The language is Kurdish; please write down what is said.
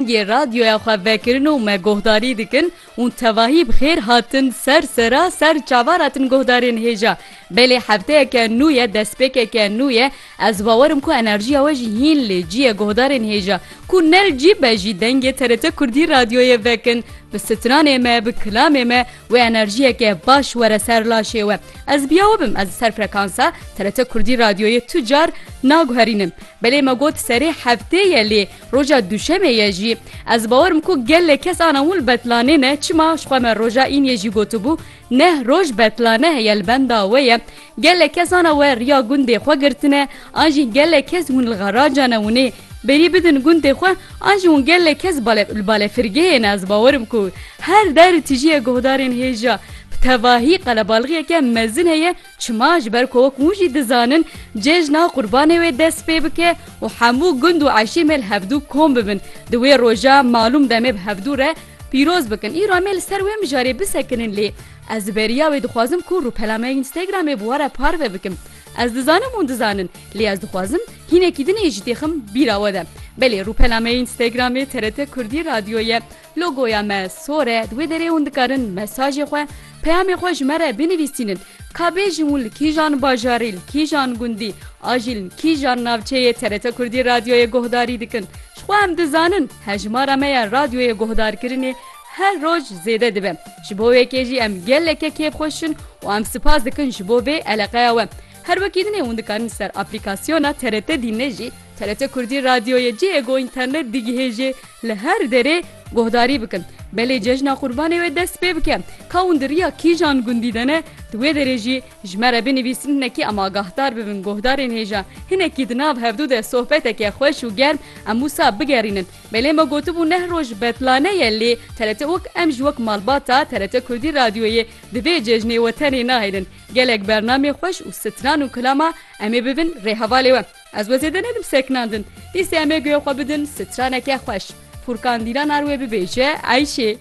Yê radyoya xwe vekirin û me guhdarî dikin û tevahî bi xêr hatin ser sera ser çavara tin guhdarên hêja. Belê hefteyeke nû ye, destpêkeke nû ye. Ez bawer im ku enerjiya we jî hîn lê cî ye guhdarên hêja. Ku ne li cî be jî dengê TRT Kurdî radyoyê vekin, bi stranê me, bi kilamê me wê enerjiyeke baş were ser laşê we. Ez biyawe bim ez li ser frekansa TRT Kurdî radyoyê tu car naguherînim. Belê me got serê heftê ye lê Roja duşemê ye jî. Ez bawer im ku gelek kes ana wil betlanê ne çima ji xwe me roja îniyê jî gotibû neh roj betlane heye li benda we ye. Gelek kes ana we riya gundê xwe girtine an jî gelek kes hûn li garaja ne winê berî bidin gundê xwe an jî hûn gelek kes bale li balefirgehê ne ez bawer im ku her der tijîye guhdarên hêja bi tevahî qelebalixiyeke mezin heye Çima? Ji ber ku wek hûn jî dizanin cejna qurbanê wê dest pê bike û hemû gund û eşîmê li hevdû kom bibin. Di wê roja malûm demê bi hevdû re pîroz bikin. Îro em ê li ser wê mijarê bisekinin lê ez li beriya wê dixwazim ku rûpela me Instagramê bi we re parve bikim. Ez dizanim hûn dizanin lê ez dixwazim hînekî din ê jî têxim bîra we de. Belê rûpela me Instagramê TRT Kurdî Radyo ye. Logoya me sor e, di wê derê hûn dikarin mesajê xwe, peyamê xwe ji me re binivîsînin. Ka bêjin hûn li kîjan bajarî, li kîjan gundî a jî li kîjan navçeyê TRT Kurdî radyoyê guhdarî dikin. Ji xwe em dizanin hejmara me ya radyoyê guhdarkirinê her roj zêde dibe. Ji bo wê kê jî em geleke kêfxweş in û em sipas dikin ji bo vê eleqeya we. Her wekî dinê hûn dikarin ser aplîkasyona TRT Dînê jî TRT Kurdî radyoyê cihê ku înternet digihê jê li her derê guhdarî bikin. Belê cejna Qurbanê wê dest pê bike. Ka hûn di riya kîjan gundî de ne, di wê derê jî ji me re binivîsin hinekî em agahdar bibin guhdarên hêja. Hinekî di nav hevdû de sohbeteke xweş û germ em wisa bigerînin. Belê me gotibû neh roj betlane ye lê TRT wek em ji wek malbata TRT Kurdî radyoyê di vê cejnê wetenê nahêlin. Gelek bernameyê xweş û stran û kilama em ê bibin rêhevalê we. Ez we zêde nedim seknandin. Dîsê em ê guya xwe bidin straneke xweş. Furkan Dîlanar wê bibêje Eyşê.